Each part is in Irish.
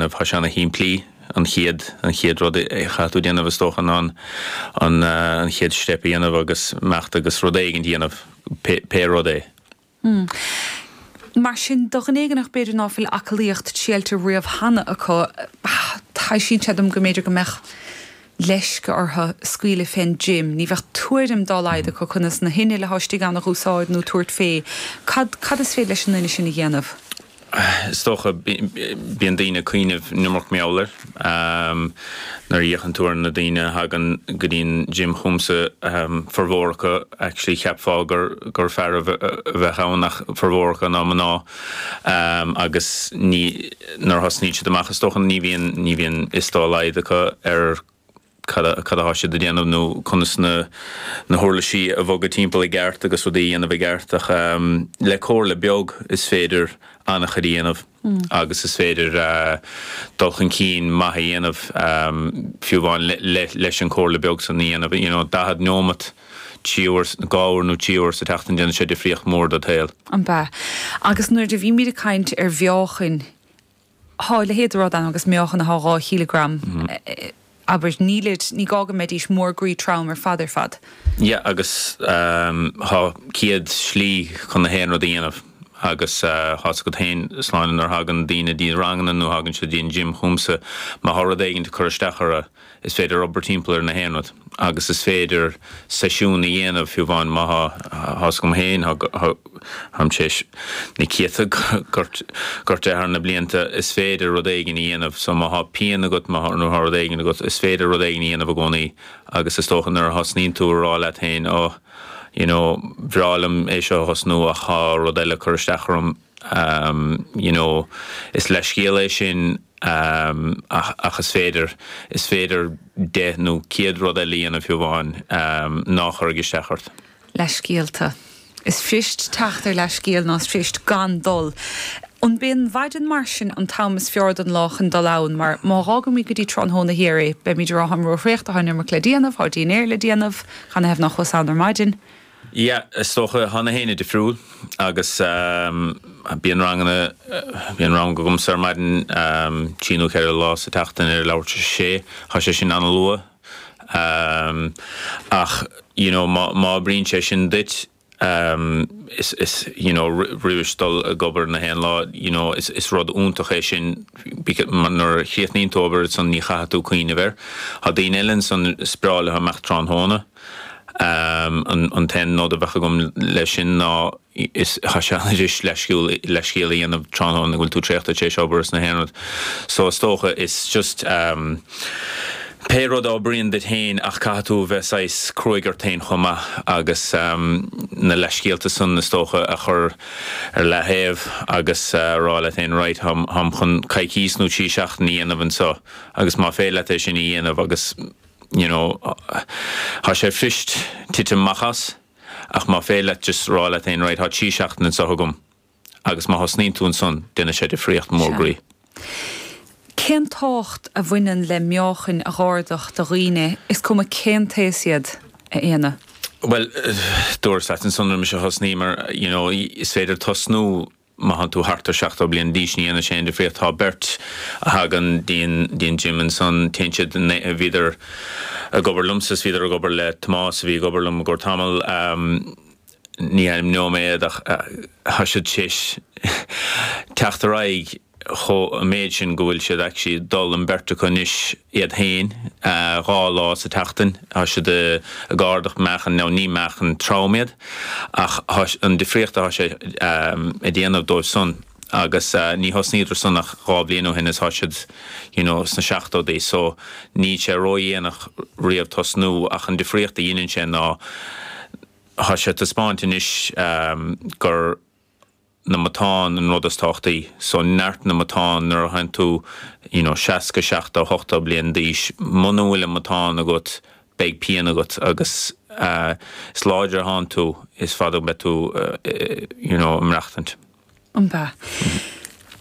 ana-shimplí an chéad, an chéad rud a chaithfidh tú déanamh is dócha ná an, an chéad step a dhéanamh agus imeacht agus rud éigin a dhéanamh, pé, pé rud é. Hmm. Mar sin, do dhuine éigineach b'fhéidir ná fuil aclaíocht triailte riamh cheana acu, taibhsítear sé dom go mb'fhéidir go mbeadh leisce orthu scaoileadh fén gym, ní bheadh tuairim dá laghad acu conas na hinnill atá istigh ann a dh'úsáid nó tabhairt fé. Cad, cad is féidir leis an duine sin a dhéanamh? Is dócha, bíonn daoine ag cuimhneamh an iomarca meáin air nuair a fhéachann tú ar na daoine a thagann go dtí an gym chugamsa, formhór acu actually cheapfá gur fearaibh a bheadh ann ach formhór acu ná mná agus ní, nuair a thosnaíonn siad amach is dócha ní bhíonn, ní bhíonn fhios dá laghad acu ar, cad atá siad a dhéanamh nó conas na huirlisí a bhogadh timpeall i gceart agus rudaí a dhéanamh i gceart ach le comhairle beag is féidir an-chuid a dhéanamh agus is féidir dul chun cinn maith a dhéanamh fiú amháin leis an gcomhairle beag san a dhéanamh. You know, daichead neomat, trí uair, dhá uair nó trí uair sa tseachtain, déanann sé difríocht mhór do do shaol. An ea? Agus nuair a bhímid ag caint ar mheáchan thá a leithéid de rud ann agus meáchana thá dhá chíleagram, abair, nílid, ní gá go mbeidís mór groí trom ar fad ar fad. Yeah, agus thá céad slí chun na haon rud a dhéanamh, agus thá's agat féin, Sláine, nuair a thagann daoine dtí ranganna nó thagann siad dtí an gym chugamsa, má thá rud éigint ag cur isteach orthu, Is féidir obair timpeall ar na haon rud agus is féidir seisiún a dhéanamh fiú amháin má tá tá's agam féin táim théis na céadta gortú thar na blianta is féidir rud éigin a dhéanamh so má tá pian agat má tá rud éigin agat is féidir rud éigin a dhéanamh i gcónaí agus is dócha nuair a thosnaíonn tú a rá leat féin oh you know bhreá liom é seo a thosnú ach tá rud eile ag cur isteach orm you know, is leithscéal é sin ach ach is féidir is féidir deich nó céad rud eile a dhéanamh fiú amháin ná chuirfidh isteach ort. leithscéalta. Is fuirist teacht ar leithscéal nó is fuirist gan dul ann. B'í an mhaidin mar sin an t-am is fearr don lá chun dul ann mar má dh'fhágaimid go dtí tráthnóna thiar é beimid ag rá táim ró-thraochta tá an iomarca le déanamh, tá an dinnéar le déanamh, canathaobh ná chuas ann ar maidin. Yeah, is dócha tá na héinne difriúil agus bíonn ranganna, bíonn rang agamsa ar maidin trí nó ceithre lá sa tseachtain ar a leathuair tar éis a sé, tá sé sin ana-luath ach you know má, má oibríonn sé sin duit is, is you know roimhis dul ag obair na haon lá you know is, is rud iontach é sin because nuair a chríochnaíonn tú obair ansan ní chaithfidh tú cuimhneamh air. Tá daoine eile ansan is fearr leo teacht amach tráthnóna. An t-aon nod a bheadh agam leis sin ná is an-fhuirist leithscéal a dhéanamh tráthnóna go bhfuil tú traochta tar éis obair is na haonaid so is dócha is just pé rud a oibríonn duit féin ach caithfidh tú a bheith saghas cruaidh ort féin chomh maith agus na leithscéalta san is dócha a chur ar leathaobh agus a rá leat féin 'right, táim chun coicíos nó trí seachtaine a dhéanamh anseo agus má féidir leat é sin a dhéanamh agus you know thá sé fuirist titim amach as ach má féidir leat just rá leat fhéin right thá trí sheachtain anseo agam agus má thosnaíonn tú ansan déanfaidh sé difríocht mór groí. Cén tábhacht a bhaineann le meáchain a dh'ardach do dhaoine, is cuma cén t-aos iad, a Éanna? Bhuel, dúras leat ansan roimis a thosnaíomar, you know is féidir tosnú má thánn tú thart ar sheachtó bliain d'aois ní dhéanann sé aon difríocht, tá beirt a thagann dtí an, dtí an gym ansan, téann siad you know, bhíodar ag obair liomsa is bhíodar ag obair le Tomás a bhí ag obair liom i gcomhair tamall, ní ainmneoidh mé iad ach tá siad théis teacht ar aghaidh chomh, an méid sin go bhfuil siad actually ag dul, an beirt acu anois, iad féin, dhá lá sa tseachtain, tá siad ag ardach meáchan, nó ní meáchan trom iad, ach an difríocht atá sé a dhéanamh dóibh san, agus ní thosnaíodar san ach dhá bhliain ó shin is tá siad, you know, sna seachtóidí, so níl sé ródhéanach riamh tosnú, ach an difríocht a dheineann sé ná tá sé taispeánta anois gur na matáin an rud is tábhachtaí, so neart na matáin, nuair athánn tú you know seasca, seachtó, ochtó bliain d'aois, muna bhfuil an matáin agat beidh pian agat agus is láidre athánn tú is fada a bheidh tú you know ag maireachtaint. An ea?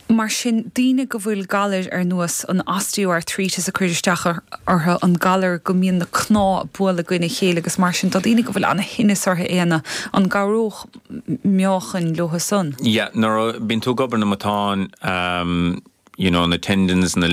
Mar sin, daoine go bhfuil galair ar nós an osteoarthritis ag cur isteach orthu, an galar go mbíonn na cnámha ag bualadh i gcoinne a chéile agus mar sin, do dhaoine go bhfuil an-thinneas orthu, Éanna, an gcabhródh meáchain leotha san. Yeah, nuair a, bíonn tú ag obair na matáin, you know, na tendons, na.